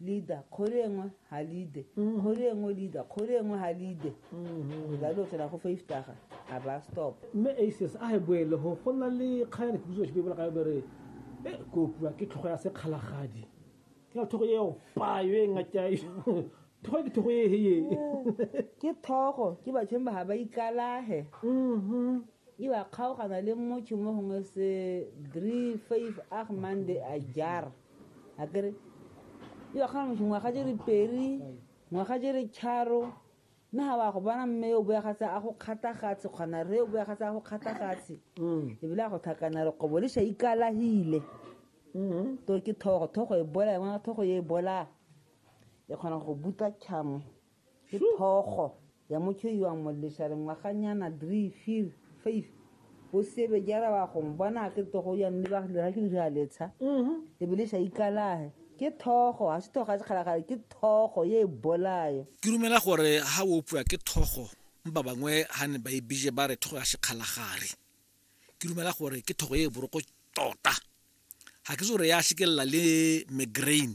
leader kgori engwe ga leader mm. kgori engwe leader kgori engwe ga leader mm-hmm. la lo tsena go faftaga a ba stop mme aces a e boele go go na le kgaya dipuso se bebola ka bere e kopiwa ke tlhogo ya sekgalagadi ke na thogo eo payo e ngatyae thogo ke thogo eeye ke thogo ke batsheng ba ga ba ikalage mm-hmm. e ba kgaogana le motho mo gongwe se three five ag monday a jara a kere e ba kgona ngwaga jere peri ngwaga jere tšharo mme ga wa go bona mme o boya gatse a go kgathagatse kgona re o boya gatse a go kgathagatse mm. ebile a go thakana re kobo le sa ikalahile mm-hmm. to ke thogo thogo e bola e ngwana thogo e bola e kgona go buta tšhamo Ke thogo ya motho yo a molesha lengwaganyana three fir five o sebe ke araba go mbona ke togo ya mme ba dira ke dira letsha e be le sa ikalahe ke thogo ga se thogo ya sekgalagale ke thogo ye e bolayo ke rumela gore ha o opua ke thogo mba bangwe ha ne ba e bije ba re thogo ya sekgalagare ke rumela gore ke thogo ye e boroko tota ga ke se gore ya shekelela le migraine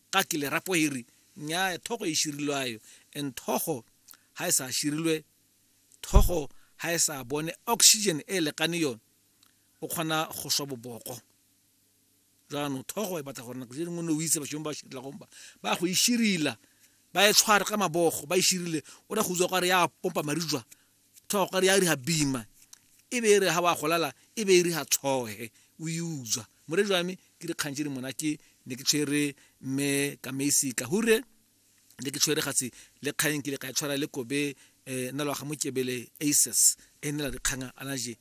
Ga ke le rapo hiri, nnyaya, thogo e shirilwe ayo, and thogo ha e sa shirilwe, thogo ha e sa bone oxygen e lekane yo, o kgona go swa boboko. Jaanong thogo e batla gore nako tse dingwe o ne o itse bashong ba shirila gomba ba go e shirila ba e tshware ka mabogo ba e shirile o ra go utswa kware ya pompa marijwa thogo re ya ri ha bima e be e re ha wa golala e be e re ha tshohe o e utswa more jwame ke dikgang tse di monate ne ke tshwere mme kamesi ka hure ne ke tshwere gatse le kgang ke le ka e tshwara le kobe um eh, naloga mokebele aces e nela dikgang a naje